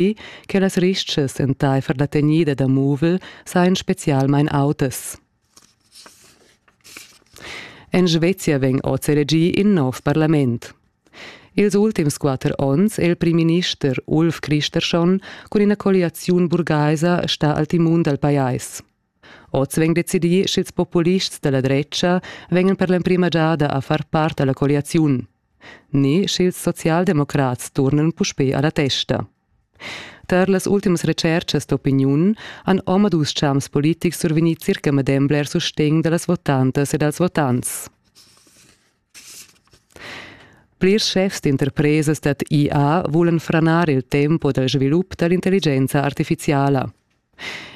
dapi che las ristgas entaifer la tegnida da muvel sajan spezialmain autas. En Svezia vegn oz elegì in nov parlament. Ils ultims quatter onns è il primminister Ulf Kristersson cun ina colliaziun burgaisa stà al timun dal pajais. Oz vegn decidì sch'ils populists da la dretga vegnan per l'emprima giada a far part da la colliaziun, ni sch'ils socialdemocrats turnan puspè a la testa. Tar las ultimas retschertgas d'opiniun han omadus champs politics survegnì circa medem bler sustegn da las votantas e dals votants. Plirs schefs d'interpresas dad IA vulan franar il tempo dal svilup da l'intelligenza artifiziala.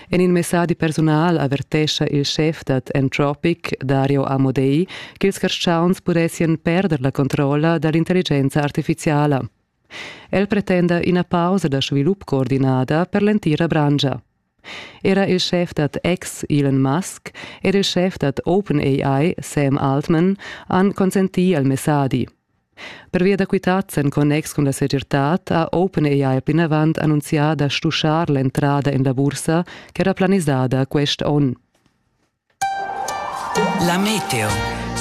En in messadi persunal avertescha il schef dad Entropic, Dario Amodei, ch'ils carstgauns pudessien perder la controlla dall'intelligenza artificiala. El pretenda ina pausa da svilup coordinada per l'entira branscha. Era il schef dad X, Elon Musk, ed il schef dad OpenAI, Sam Altman, han consentì al messadi. Pervia da quitads en connex cun la segirtad ha OpenAI plinavant annunzià da stuschar l'entrada en la bursa ch'era planisada quest onn. La meteo.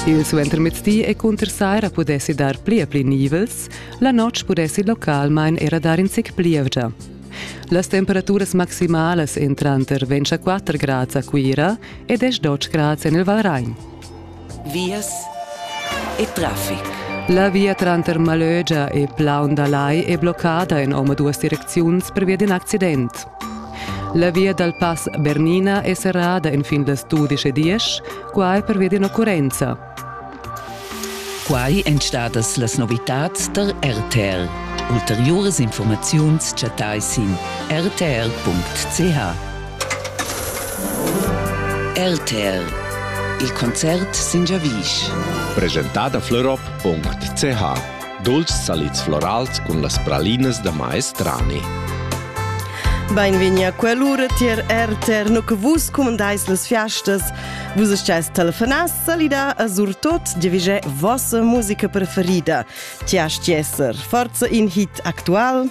Il suentermezdi e cunter saira pudessi dar pli e pli nivels, la notg pudessi localmain era dar in zic plievgia. Las temperaturas maximalas èn tranter 24 grads a Cuira e 10 grads en il Valrain. vias e traffic. La via tranter Malögia e Plaundalai è bloccada in omaduas direcziuns pervia d'in accident. La via dal pass Bernina è serrada enfin las 12.10, quai pervia d'ina occurrenza. Quai èn stadas las novitads tar RTL. Ulteriuras informaziuns chattai sin rtl.ch. RTL Il concert sin giavisch. Presentada fleurob.ch Dulcis salids florals cun las pralinas da maestrani. Beinvegni a quell'ura tier RTR no che vus comandais las fiastas. Vus estais telefonats salida a surtot divige vossa musica preferida. Ti asti esser forza in hit actual?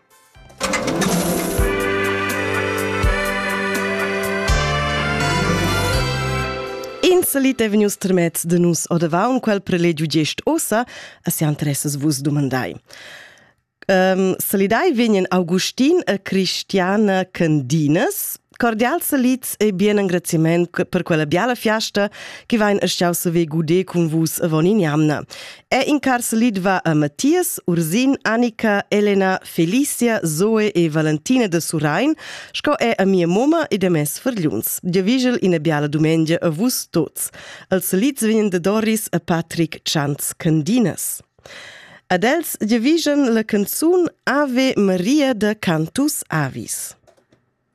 In salit è vegnius termets da nus odavaun quel prelegiu gest ossa, e se interessas vus dumandai. Um, salidai vegnan Augustin e Christiane Candinas, Cordial salits e bien engraziament per quella biala fiasta che vain estiau se ve gude cun vus avon in jamna. È in car salit va a Mattias, Ursin, Annika, Elena, Felicia, Zoe e Valentina de Surain, sco è a mia moma e de mes furgliuns. Dia vigel ina biala dumengia a vus tots. Els salits vegn de Doris a Patrick Chans Candinas. Ad els dia vigen la canzun Ave Maria de Cantus Avis.